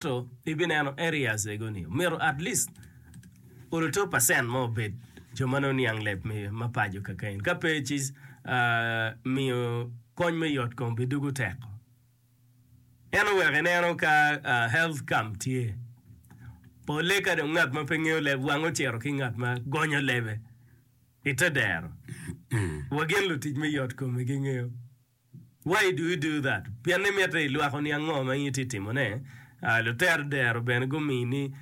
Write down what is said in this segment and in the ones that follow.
Ento ibineno areas ego ni omyero at least oluto percent mo obed jo ma nongo niang leb me ma paco keken, ka pe ci miyo kony me yot kom bidugu tek. Ento wek ineno ka health camp tye, polle ka dong ngat ma pe ngeyo leb wang ocito ki ngat ma gonyo lebe ite dero wa gin lutic me yot kom gingeyo. Why do you do that? Pien imito ilwako ni ango ma in itye timo ne? Lutero dero bene gumini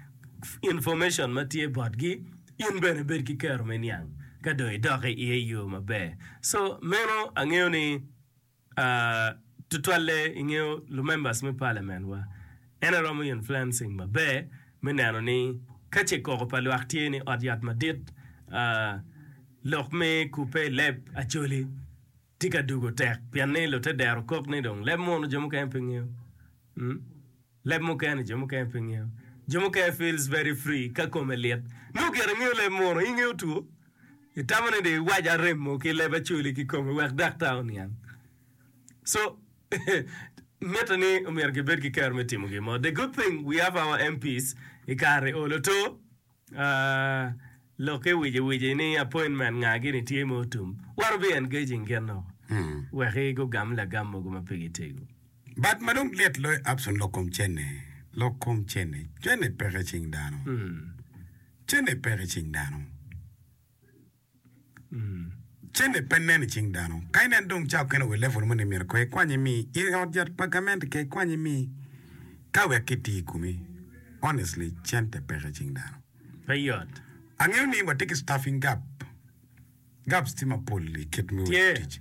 information ma tye bot gi, in bene bed ki kero me niang ka dong idok i iye iyoo maber. So meno angeyo ni tutwalle ingeyo lu members me parliament wa en aye romo influencing maber me neno ni ka ce koko pa lwak tye ni ot yat madit lok me kubbe ileb acholi. Tye ka dugo tek pien ni lute dero kok ni dong leb munu jo mukene pe ngeyo. Leb mukene jo mukene pe ngeyo. Jo mukene feels very free ka kome lit. Nongo gire ingeyo leb munu, in ingeyo two, itamo ni dong iwaca remo ki leb acoli ki kome wek daktar oniang. So mitte ni omyero kibed ki kero me timo gin mo. The good thing we have our MPs i kare olo two. Lokke wici-wici ni appointment nga gini tye ma otum, what to be engaging kit noko wek i gugam lagam mogo ma pe gitego. But ma dong lit loyo Abson lok kom cene, lok kom cene, cene peke i cing dano, cene peke i cing dano. Cene pe nen i cing dano. Ka inen dong ca okene wa i level moni myero ko ikwany imi i ot yat pa gamente ka ikwany imi ka wek ki ti i komi. Honestly cente peke i cing dano. Pe yot. Angeyo ni watye ki staffing gap. Gaps tye mapol i kit me wot tic.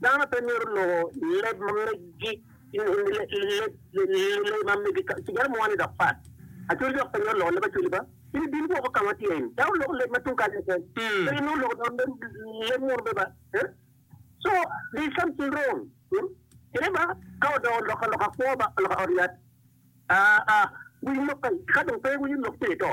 Dano pe myero loko leb ma meggi kadi mo ni dok pat. Acwali dok pe myero loko leb acwali ba. In ibin woko ka ma atye in, dok iloko leb ma tung kany keken, pe inongo iloko dong leb muno bene ba. So, there is something wrong. Kine ba ka odoko lok ka lok akwo ba ka lok ka ot yat, aa, aa, wi lok ka dong pe wi lok pire to.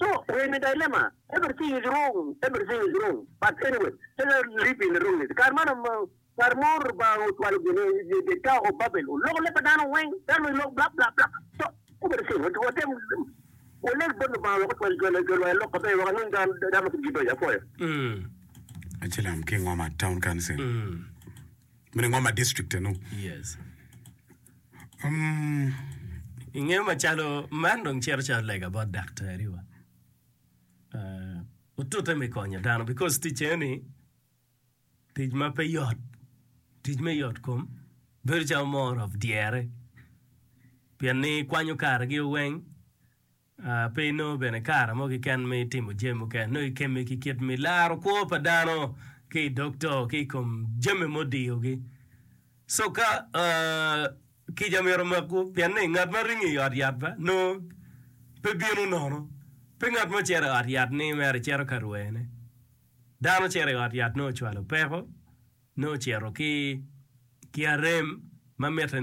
So rem i dilemma, everything is wrong, everything is wrong, but anyway let us live in wrongness, kare man kare mo Lubanga ocwalo gin i dye tower of Babel oloko leb pa dano weng, dano weng lok blap blap blap, so everything watem waleg bot Lubanga wek ocwal jolwa i lok maber wek wanweng dano ma kit-gi beco, apwoyo. Acilam ki Ngoma Town Council. Meno ngom ma district eno. Yes. Um, Ingeyo macalo man dong cito calo lega bot daktariwa. Uh, otute me konyo dano because ticce ni tic ma pe yot, tic me yot kom bedo calo more of dyere. Pien ni kwanyo kargi weng Pe inongo bene kare mo keken me timo jami mukene. Nongo ikemme ki kit me laro kwo pa dano ki i dog to ki i kom jami mudiyogi. Soka kica myero omakwu, pien ni ngat ma ringo i ot yat nongo pe bino nono. Pe ngat mo cito i ot yat ni mere cito ka rwene. Dano cito i ot yat nongo ocwalo peko, nongo ocito ki arem ma mitte ni.